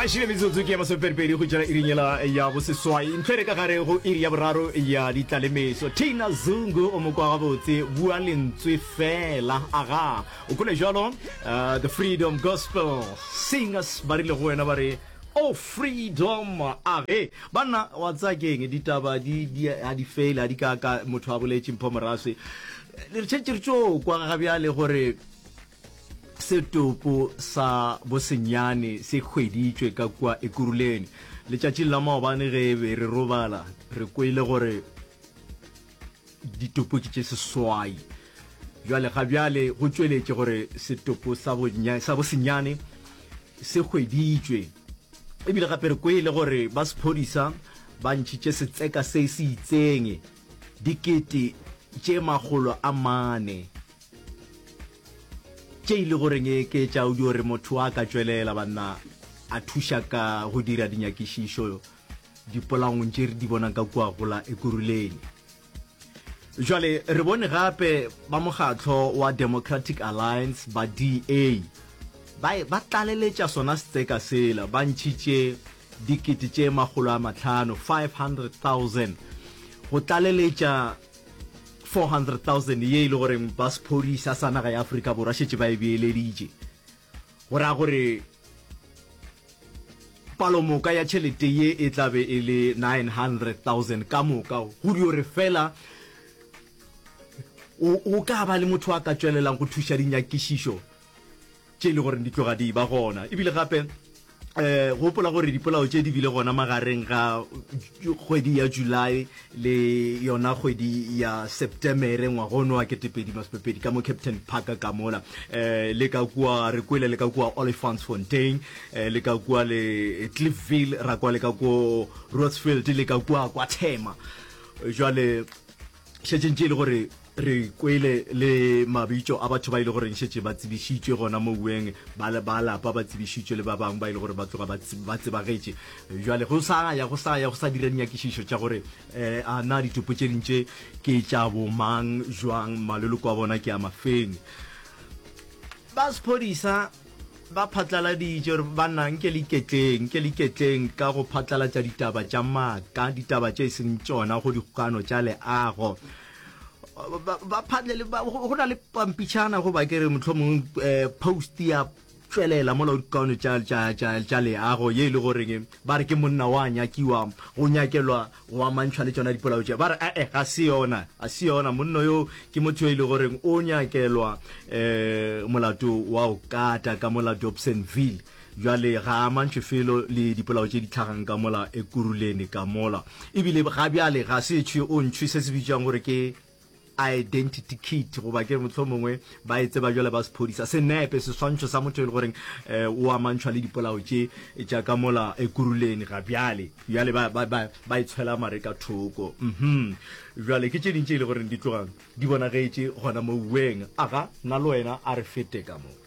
a šile metsotso ke ya masoperipedi go tšela irinyela ya boseswai ntlhere ka gare go iri ya boraro ya ditlalemeso tina zungu o mokwa gabotse bua lentswe fela aga o kole jalo uh, the freedom gospel singers ba rile go wena ba re o oh, freedom age banna wa tsakeng ditaba di a di fele a di kaka motho a boletse mpho moraswe le re tšhetše re tso kwa ga bjale gore Setopo sa Bosenyane se hweditšwe ka kua Ekuruleni. Letšatšing la maobane ge e be re robala, re kwele gore ditopo ke tše seswai. Bjale ga bjale go tšweletše gore Setopo sa Bonya, sa Bosenyane se hweditšwe. Ebile gape re kwele gore ba sephodisa ba ntšhitše setseka se se itseng dikete tše makgolo a mane Tše e lego reng ke tša o di gore motho a ka tšwelela banna a thuša ka go dira dinyakišišo dipolangong tše re di bonang ka kua gola ekuruleng jwale re bone gape ba mokgatlho wa democratic alliance ba da ba ba tlaleletša sona setseka sela ba ntšhitše dikete tše magolo a matlhano 500000 go tlaleletša 400,000 ye e le goreng ba sephodisa sa naga ya Afrika Borwa šetše ba e beeleditše go ra gore palomoka ya tšhelete ye e tla be e le 900,000 ka moka go dio re fela o ka ba le motho a ka tšwelelang go thuša dinyakišišo tše e le gore di tloga di ba gona. Ebile gape gopola gore dipolao tše di bile gona magareng ga kgwedi ya July le yona kgwedi ya Septemere ngwagono wa ketepedi masepepedi ka mo Captain Park ka mola um le ka kua re kwele le ka kua Olifantsfontein um le ka kua le Cliffville ra kwa le ka ko Rotsfield le ka kua kwa Thema jwale Šetšeng tše e le gore re kwele le mabitšo a batho ba e le goreng šetše ba tsebišitšwe gona mo ueng, ba ba lapa ba tsebišitšwe le ba bangwe ba e le gore ba tloga ba tsebagetše. Bjale go sa ya go sa ya go sa dira dinyakišišo tša gore um a na ditopo tše ding tše ke tša bomang, jwang, maloloko a bona ke a mafeng. Ba sephodisa Ba phatlaladitše gore banna nke le iketleng, nke le iketleng ka go phatlalatša ditaba tša maaka, ditaba tše e seng tšona go dikgokano tša leago. Ba- ba phatle le- ba- go go na le pampitšhana goba ke re motlho mongwe um post ya tšwelela mola go dikgokano tša- tša tša- tša leago ye e le goreng ba re ke monna wa nyakiwa go nyakelwa Go amantšhwa le tšona dipolao tše, ba re, A-e, ga se yona, ga se yona. Monno yo ke motho yo e le goreng o nyakelwa um molato wa go kata ka mola Dobsonville. Bjale ga a amantšhwe felo le dipolao tše di tlhagang ka mola Ekurhuleni ka mola. E bile ga bjale ga se tšhwe o ntšhwe se se bitšwang gore ke identity kit goba ke motlho mongwe ba e tseba jale ba sephodisa senepe seswantšho sa motho e le goreng um o amantšhwa le dipolao tše tša ka mola ekuruleni ga bjale bjale ba e tshwela mare ka thoko um jale ke tše ding tše e le goreng di tlogang di bonagetše gona mouweng aga nna le wena a re fete ka moo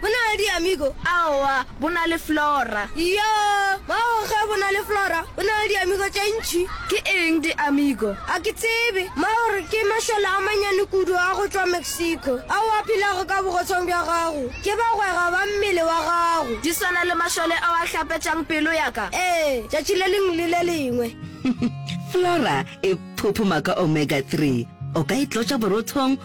Bo na le diamigo? Aowa, bo na le flora. Iyo, bao ge bo na le flora, bo na le diamigo tše ntši. Ke eng diamigo? A ke tsebe. Maori ke mašole a manyane kudu a go tšwa Mexico, ao a phelago ka bogotshong bja gago. Ke bagwera ba mmele wa gago. Di swana le mašole ao a hlapetšang pelo ya ka? Ee, tšatši le lengwe le le lengwe. Flora e phuphuma ka omega-three. O ka e tlotša borothong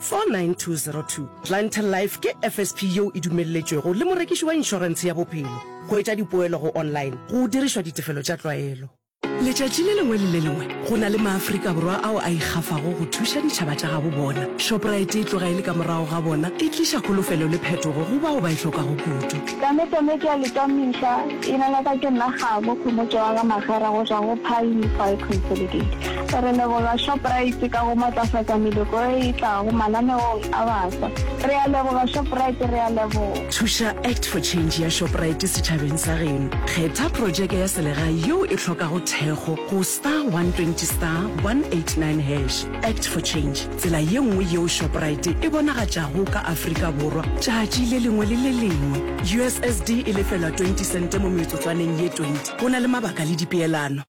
49202 Planter Life ke FSP yeo e dumelletšwego le morekiši wa inšorense ya bophelo. Go etša dipoelo go online go dirišwa ditefelo tša tlwaelo. Letšatši le lengwe le le lengwe go na le maAfrika Borwa ao a ikgafago go thuša ditšhaba tša gabo bona. Shoprite e tloga e le ka morago ga bona, e tliša kholofelo le phetogo go bao ba e hlokago kudu. Tame tame ke ya le ka mehla, e lala ka ke nna kgabo, Khomotšo wa ga Magera go tšwa go Pioneer Fire Consolidated. Re leboga Shoprite ka go matlafatsa meloko e e tlago mananeong a bafsa. Re a leboga Shoprite, re a leboga. Thuša Act for Change ya Shoprite setšhabeng sa geno. Kgetha projeke ya selegae yeo e hlokago thekgo go star 120 star 189 hash. Act for Change, tsela ye nngwe yeo Shoprite e bonagatšago ka Afrika Borwa tšatši le lengwe le le lengwe. USSD e lefelwa 20 sente mo metsotswaneng ye 20. Go na le mabaka le dipeelano.